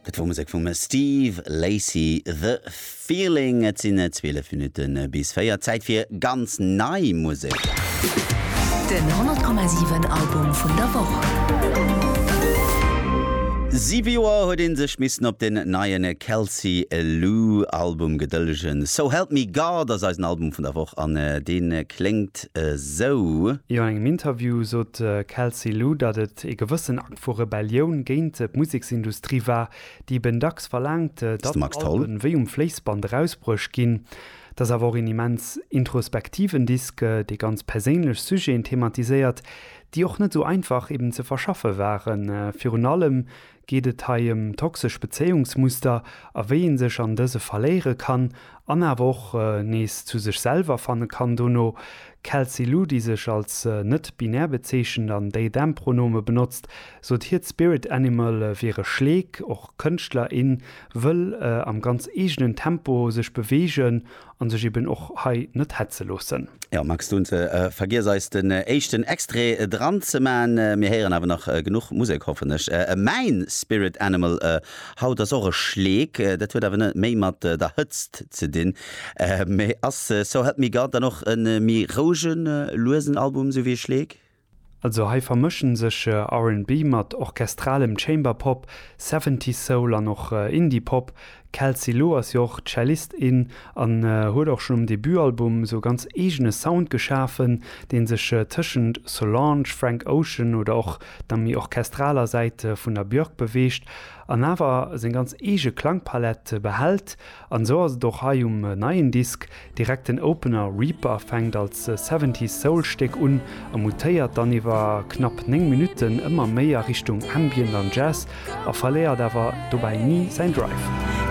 Dat wor Musek vum Steve Lacy, The Feeling. Et sinn 12 Minutte bis 4, Zäit fir ganz nei Musek. Den 100,7 Album vun der Woch. Siwe Joer huet ee sech missen op den neie Kelsey Lu Album gedëllegen. So Help Me God ass eisen Album vun der Woch an deen kléngt esou. Jo an engem Interview sot d'Kelsey Lu, datt et ee gewëssen vu Rebellioun géint d'Museksindustrie war, déi eben dacks verlaangt, datt Alben wéi Um Fléissband erausbruecht ginn. Et ass awer och een immens introspektiven Disk, dee ganz perséinlech Sujeten thematiséiert, déi och net esou einfach eben ze verschaffe waren. Virun allem geet et hei ëm toxesch Bezéiungsmuster a wéi ee sech an dëse verléiere kann an awer och nees zu sech selwer fanne kann dono. D'Kelsey Lu, déi sech als net-binär bezeechent an They-Them-Pronome benotzt, sot hiert Spirit Animal wier e Schleek. Och Kënschtler, in wëll am ganz eegenen Tempo sech beweegen an sech eben och hei net hetze loossen. Jo Max, du vergiess eis den éischten Extrait dran ze man. Mir héieren awer nach genuch Musek, hoffen ech. Mäin Spirit Animal Haut ass och e Schleek, dat huet awer net méi mat der Hëtzt ze dinn, mä ass So Help Me God dann och e méi rouegen, luesen Album, sou wéi e Schleek? Also hei vermëschen sech RnB mat orchestralem Chamberpop, Seventies Soul an och Indie Pop. Kelsey Lowe ass jo och Cellist, in an huet och schonn um Debutalbum sou e ganz eegene Sound geschafen, deen sech tëschent Solange, Frank Ocean oder och der méi orchestraler Säit vun der Björk beweegt an awer seng ganz eege Klangpalett behält, an esou ass et och hei um neien Disk. Direkt den Opener Reaper fänkt als Seventies Soul Stéck un a mutéiert dann iwwer knapp 9 Minutten ëmmer méi a Richtung Ambient an Jazz a verléiert awer dobäi ni säin Drive.